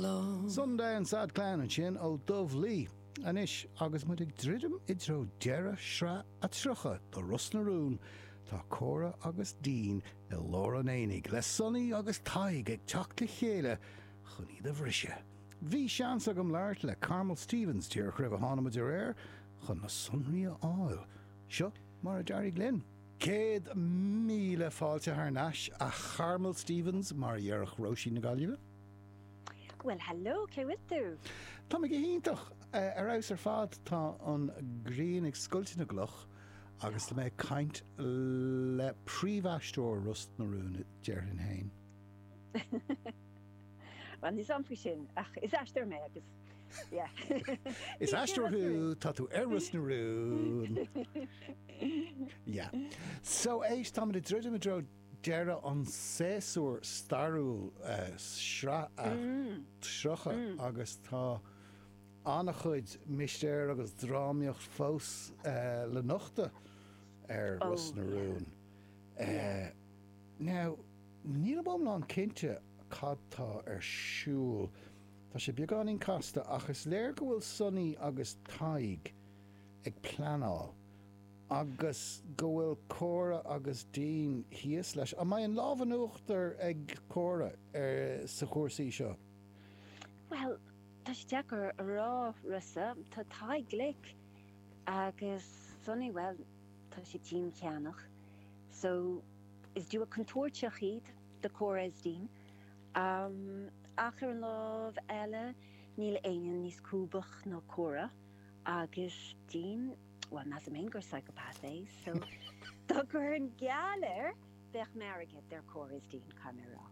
long. Sunday and Sad Clan ansin ó Dubh Lí. Anois agus muid ag druidim i dtreo deireadh sraith a 30 de Ros na Rún, tá Córa agus Dean i lár an aonaigh, le Sonny agus Tadhg ag teacht le chéile chun iad a bhriseadh. Bhí seans agam labhairt le Carmel Stephens díreach roimh a tháinig muid ar aer chun na sonraí a fháil. Seo mar a d'éirigh linn. Céad míle fáilte thar n-ais, a Charmel Stephens, mar a dhéarfadh Róisín na Gaillimhe. Bhuel, heileo, cén chaoi a bhfuil tú? Tá mé go hiontach, ar fheabhas ar fad. Tá an ghrian ag scoilteadh na gcloch agus tá mé ag caint le príomhaisteoir Ros na Rún, déarfainn fhéin. Bhuel, níl a fhios a'm faoi sin, ach is aisteoir mé agus Is aisteoir thú, tá tú ar Ros na Rún. Yeah. So éist, táimid ag druidim i dtreo deireadh an tséasúir stairiúil, sraith a 30, agus tá an-chuid mistéir agus drámaíocht fós le nochtadh ar Ros na Rún. Now, nílim iomlán cinnte cad tá ar siúl Tá sé beagáinín casta ach is léir go bhfuil Sonaí agus Tadhg ag pleanáil agus go bhfuil Cora agus Dean thíos leis. An mbeidh an lámh in uachtar ag Cora ar sa chúrsaí seo? Bhuel, tá sé deacair a rá, Rossa. Tá Tadhg glic agus Sonaí, bhuel, tá sé diancheannach. So, is duo contúirteach iad do Cora is Dean. Am, ach ar an lámh eile, níl éinne níos cliúsaí ná Córa agus Dean, bhuel, measaim féin gur psychopath é, so, dá gcuirfinn geall air, bheadh m'airgead ar Cora is Dean, caithfidh mé a rá.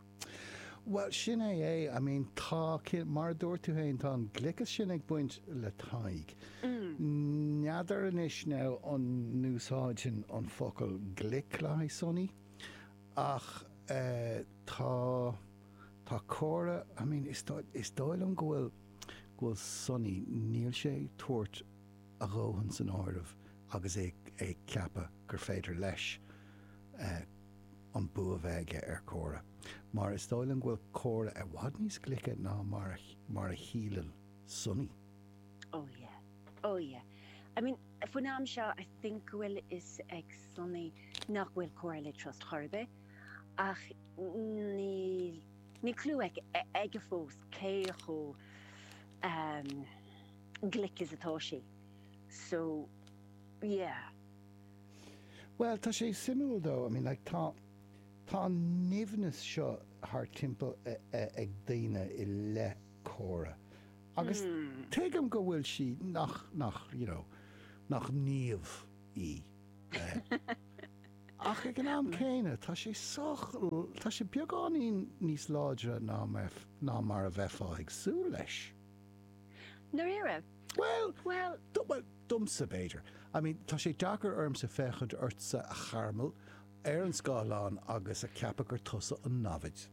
Bhuel, sin é, I mean, tá, mar a dúirt tú féin, tá an gliocas sin ag baint le Tadhg. N'fheadar anois now an n-úsáidfinn an focal glic le haghaidh Sonny? Ach tá, tá Cora, I mean, is dóigh, is dóigh liom go bhfuil, go bhfuil Sonny, níl sé ag tabhairt a dhóthain san áireamh agus é ag ceapadh gur féidir leis an bua a bheith aige ar Chora. Mar is dóigh liom go bhfuil Cora i bhfad níos glice ná mar a, mar a shíleann Sonny. Oh yeah. Oh yeah. I mean, faoin am seo, I think go bhfuil fhios ag Sonny nach bhfuil Cora le trust ar chor ar bith, ach níl, níl clú aige fós cé chomh ehm, glic is atá sí. So, yeah. Bhuel, tá sé suimiúil dó, I mean like tá, tá an nimhneas seo thart timpeall ag daoine i leith Cora. Agus tuigim go bhfuil sí, nach, nach, you know, nach naomh í. Ach ag an am céanna, tá sé sách, tá sé beagáinín níos láidre ná mar a bheifeá ag súil leis. Ndáiríre? Bhuel, Bhuel. domsa b'fhéidir. I mean, tá sé deacair ormsa féachaint ortsa a Charmel, ar an scáileán agus a ceapadh gur tusa an namhaid.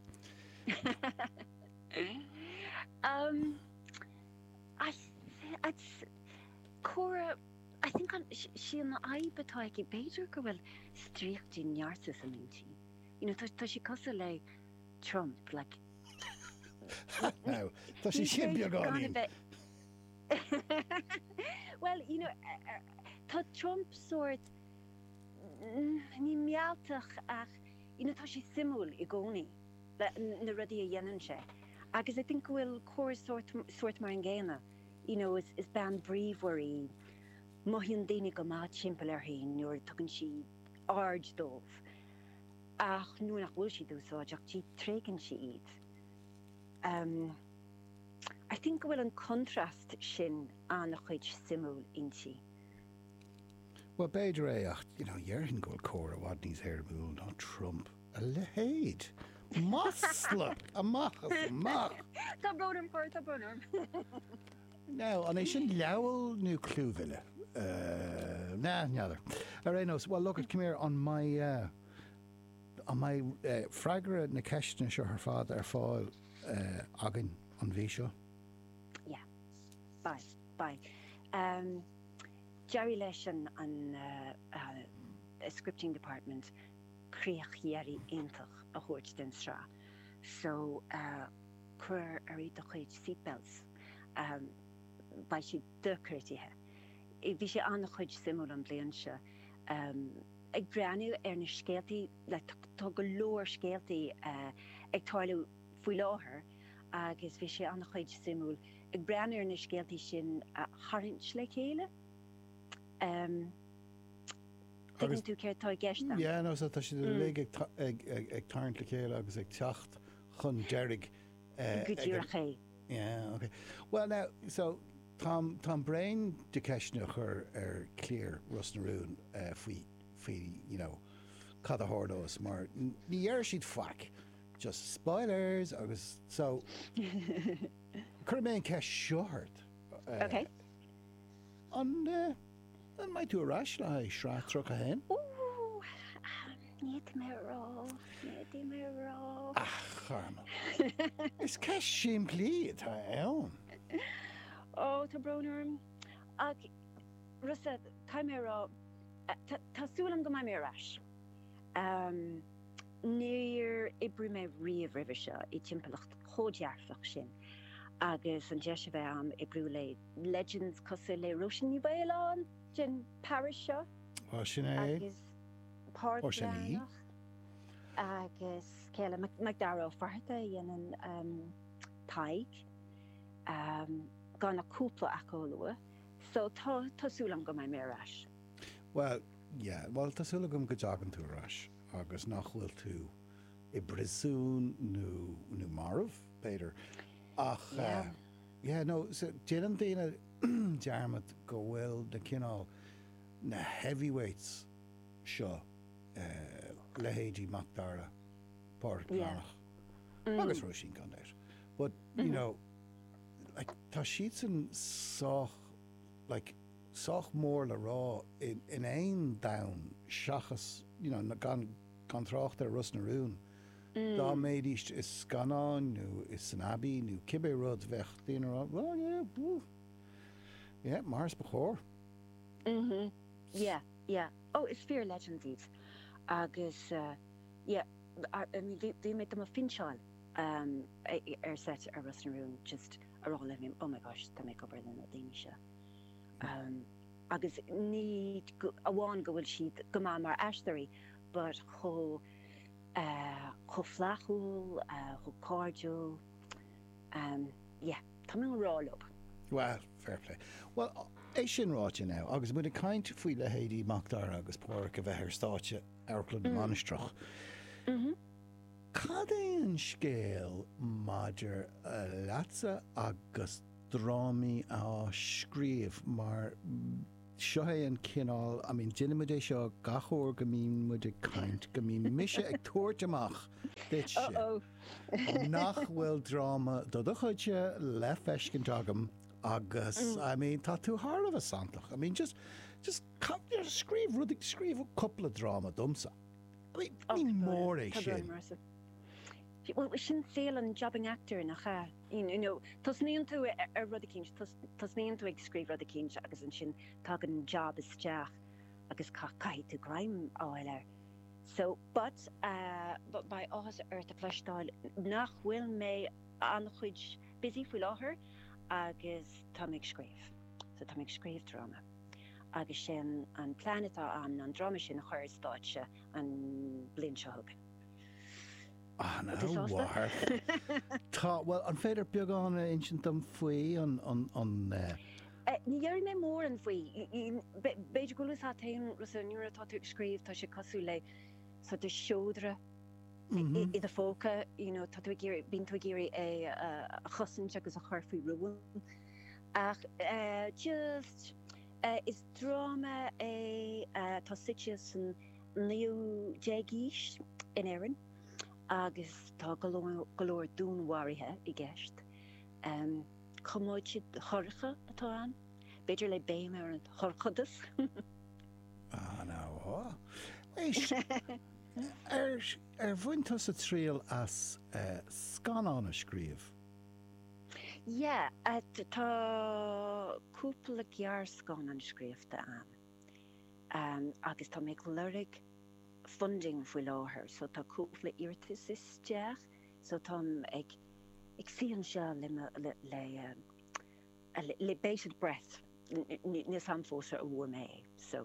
Cora, I think an, sí an fhadhb atá aici, b'fhéidir go bhfuil stríoc de narcissist san intinn. You know, tá, tá sí cosúil le Trump, like, What now? Tá sí sin beagáinín! Well, you know, tá Trump sórt, ní mealltach ach, you know, tá sé suimiúil i gcónaí. na rudaí a dhéanann sé agus I think go bhfuil Cora sórt, sórt mar an gcéanna, you know is, is bean bríomhar í, mothaíonn daoine go maith timpeall uirthi nuair a tugann sí aird dóibh ach nuair nach bhfuil siad úsáideach di tréigeann sí iad. Em. I think go bhfuil an contrast sin an-chuid suimiúil inti. Bhuel, b'fhéidir é ach, you know, dhéarfainn go bhfuil Cora i bhfad níos éirimiúil ná Trump. A leithéid! Masla! Amach is amach! Tá brón orm, Cora, tá brón orm. Now, an é sin leabhail nó clúmhilleadh? Ahh, na, n'fheadar. Ar aon nós, well, look it, come here, an mbeidh, eh, an mbeidh, eh, freagra na ceisteanna seo ar fad ar fáil, eh, againn an mhí seo? Yeah. Beidh, beidh. Ehm, d'éirigh leis an, an, eh, eh, scripting department. críoch dheiridh iontach a thabhairt den sraith so cuir oraibh do chuid seatbelts beidh sé dochreidte. Bhí sé an-chuid suimiúil an bliain seo ag breathnú ar na scéaltaí le tá go leor scéaltaí ag tarlú faoi láthair agus bhí sé an-chuid suimiúil ag breathnú ar na scéaltaí sin a tharraingt le chéile. Tuigeann tú céard atá i gceist ann? Yeah, nó tá siad uilig ag tarraingt le chéile agus ag teacht chun deiridh ag an. Go díreach é. Yeah, ok. Well now, so táim bréan de ceisteanna a chur ar chliar Ros na Rún, faoi, you know, cad a tharlós mar ní deir siad faic, just spoilers agus so cuirfidh mé an ceist seo ort. Ok. An. An mbeidh tú ar ais le haghaidh Sraith 31? Ó, n'fhéadfaidh mé a rá, n'fhéadfaidh mé a rá. Ach, Carmel, is ceist simplí atá ann. Ó, tá brón orm. Ach, Rossa, caithfidh mé a rá, tá, tá súil agam go mbeidh mé ar ais. Níor oibrigh mé riamh roimhe seo i dtimpeallacht chomh dearfach sin agus an deis a bheith a'm oibriú le. Legends cosúil le Róisín Ní Mhaoláin den parish seo agus Páraic Breathnach agus céile Macdara Ó Fátharta a dhéanann Tadhg gan ach cúpla acu a lua so tá súil agam go mbeidh mé ar ais. Bhuel yeah bhuel tá súil agam go dtagann tú ar ais agus nach bhfuil tú i bpríosún nó marbh b'fhéidir ach. Yeah, no, so, déanann daoine dearmad go bhfuil na cineál, na heavyweights seo, leithéidí Macdara, Páraic Breathnach agus Róisín Conghaile but, you know, like, tá siadsan sách, like, sách mór le rá in aon domhan seachas, you know, gan trácht ar Ros na Rún. Dá mbeidís i scannán nó insan Abbey nó cibé rud bheadh daoine a rá, well yeah, phew, yeah, mar is ba chóir. Mhm, yeah, yeah. Oh, is fíor-legends iad. Agus yeah, I mean bhí mé do mo phinseáil ar seit ar Ros na Rún just a rá like oh my gosh, tá mé ag obair le na daoine seo. Agus ní amháin go bhfuil siad go maith mar aisteoirí but chomh chomh flaithiúil, chomh cairdiúil, yeah, tá mé i ngrá leob. Bhuel, fair play. Bhuel, é sin ráite now, agus muid ag caint faoi leithéidí Macdara agus Páraic a bheith ar stáitse Amharclann na Mainistreach, cad é an scéal maidir leatsa agus drámaí a scríobh mar. Seo é an cineál, I mean, deinimid é seo gach uair go mbíonn muid ag caint, go mbíonn mise ag tabhairt amach duitse. Uh-oh. Nach bhfuil dráma dod chuidse le feiscint agam agus, I mean, tá tú thar a bheith santach. I mean, just, just ca-, you know, scríobh rud, scríobh cúpla dráma domsa. I mean, ní mór é sin. Tá go leor mar sin. Bhuel, sin saol an jobbing actor, nach ea? you know tosnaíonn tú ar rud eicínt, tosnaíonn tú ag scríobh rud eicínt agus ansin tagann an jab isteach agus caithfidh tú greim a fháil air so but eh beidh áthas ort a chloisteáil nach bhfuil mé an-busy faoi láthair agus tá mé ag scríobh so tá mé ag scríobh dráma agus sin an plean atá a'm ná an dráma sin a chur ar stáitse an bhliain seo chugainn. Ana mhaith. Tá, bhuel, an féidir beagán a insint dom faoi an. Ní déarfaidh mé mórán faoi. B'fhéidir go bhfuil fhios a'd féin, Rossa, nuair atá tú ag scríobh tá sé cosúil le sort of seodra i do phóca, you know, tá tú ag iarraidh, bíonn tú ag iarraidh é a chosaint agus a chur faoi rún. Ach just, is dráma é, tá suite san. 19ú aois in Éirinn agus tá go leor dúnmharuithe i gceist. Coiméide dhorcha atá ann, b'fhéidir le béim ar an dhorchadas. Ana-mhaith. Éist, ar bhain tusa triail as scannán a scríobh? Yeah, tá cúpla gearrscannán scríofa agam. agus tá mé ag lorg funding faoi láthair so tá cúpla iarratas isteach so táim ag ag suí anseo le mo le le bated breath níl 's am fós ar bhfuair mé é so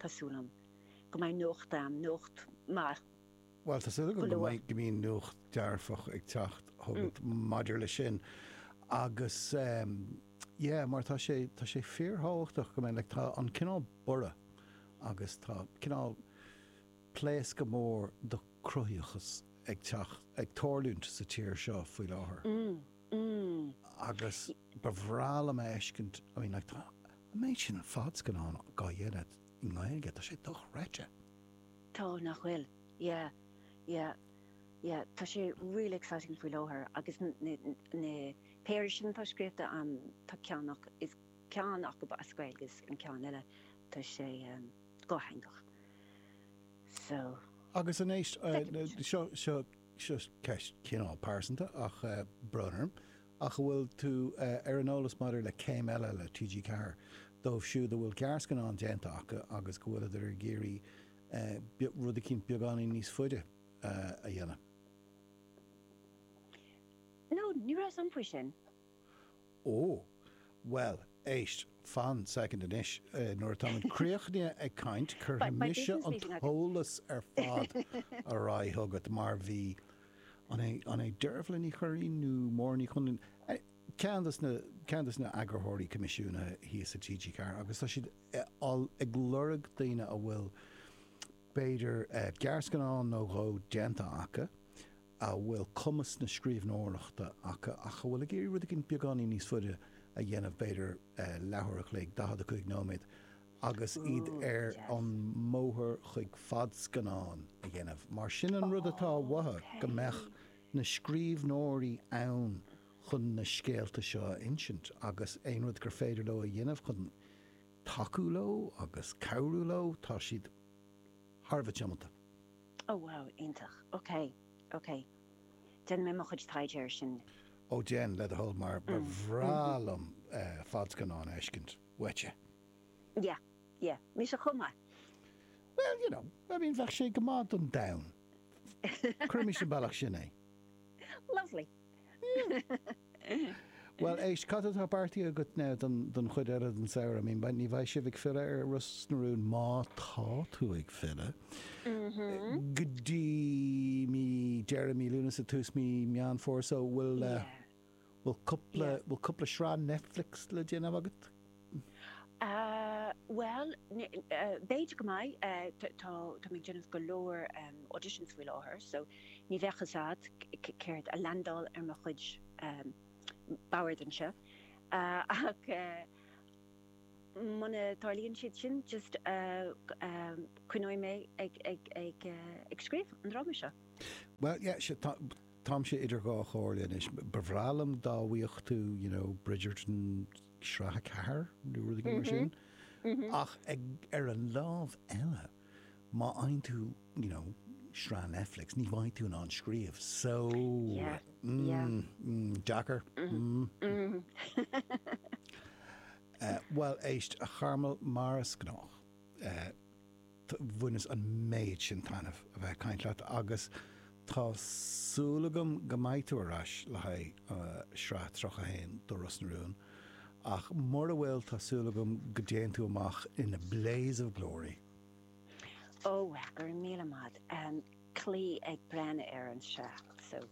tá súil agam go mbeidh nuacht agam nuacht maith. Bhuel, tá súil agam go mbíonn nuacht dearfach ag teacht chugat maidir leis sin agus, yeah, mar tá sé, tá sé fíorthábhachtach go mbeidh, like, tá an cineál borradh agus tá cineál pléascadh mór do cruthaíochas ag teacht, ag tarlúint sa tír seo faoi láthair agus ba bhreá liom a fheiscint, I mean, like, tá an méid sin fadscannán á dhéanamh i nGaeilge, tá sé dochreidte. Tá, nach bhfuil? Yeah, yeah, yeah. Tá sé really exciting faoi láthair agus na péire sin atá scríobhta a'm, tá ceann acu, ceann acub as Gaeilge is an ceann eile, tá sé dhátheangach. So, Agus anois, feicfimid. seo. seo ceist cineál pearsanta tá brón orm, ach an bhfuil tú ar an eolas maidir le céim eile le TG4 dóibh siúd a bhfuil gearrscannán déanta acu agus go bhfuil siad ag iarraidh rud eicínt beagáinín níos faide a dhéanamh? No, ní raibh a fhios agam faoi sin. Ó, bhuel, éist, fan second anois, nuair atáimid críochnaithe ag caint, cuirfidh mise an t-eolas ar fad ar aghaidh chugat, mar bhí, an é Deirbhle Ní Churraoin nó Máire Ní Chonluain, ceann dos na heagarthóirí coimisiúnaithe thíos i TG4 agus tá siad ag lorg daoine a bhfuil, b'fhéidir, gearrscannán nó dhó déanta acu, a bhfuil cumas na scríbhneoireachta acu ach atá ag iarraidh rud éigin beagáinín níos faide a dhéanamh, b'fhéidir leathuair a chloig, 45 nóiméad, agus iad ar an mbóthar chuig fadscannán a dhéanamh. Mar sin an rud atá uathu, go mbeadh na scríbhneoirí ann chun na scéalta seo a insint agus aon rud gur féidir leo a dhéanamh chun tacú leo agus cabhrú leo, tá siad thar a bheith tiomanta. Oh wow, iontach. Ok, ok. Déanfaidh mé mo chuid taighde air sin. Ó déan, le do thoil, mar ba bhreá liom fadscannán a fheiscint uaitse. Yeah, yeah. Mise chomh maith. Well, you know, I mean, bheadh sé go maith don domhan. Cuirimis an bealach sin é. Lovely. Bhuel, éist, cad atá beartaithe agat now don, don chuid eile den samhradh? I mean, ní bheidh sibh ag filleadh ar Ros na Rún, má tá tú ag filleadh, mm-hmm. go dtí, deireadh mí Lúnasa, tús mí Meán Fómhair, so bhfuil, uh, yeah. bhfuil cúpla, yeah. bhfuil cúpla sraith Netflix le déanamh agat? Bhuel, b'fhéidir go mbeidh. Tá mé ag déanamh go leor auditions faoi láthair, so ní bheadh fhios a'd céard a leaindeálfadh ar mo chuid bord anseo. Ach muna dtarlaíonn siad sin, just coinneoidh mé ag scríobh an dráma seo. Bhuel, yeah, sea, táimse idir dhá chomhairle anois. Ba bhreá liom dá bhfaighfeá, you know, Bridgerton Sraith 4 nó rud éigin mar sin. Ach ar an lámh eile, má fhaigheann tú, you know, sraith Netflix, ní bheidh tú in ann scríobh. So, mm, deacair. Bhuel, éist, a Charmel, mar is gnách, eh, Bhaineas an méid sin taitneamh a bheith ag caint leat agus tá súil agam go mbeidh tú ar ais le haghaidh sraith 31 do Ros na Rún ach mura bhfuil tá súil agam go dtéann tú amach in a blaze of glory. Ó, bhuel, go raibh míle maith agat, bí ag breathnú ar an sraith seo.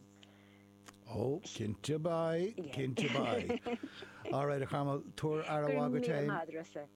Ó, cinnte beidh, cinnte beidh. Alright a Charmel, tabhair aire mhaith duit fhéin.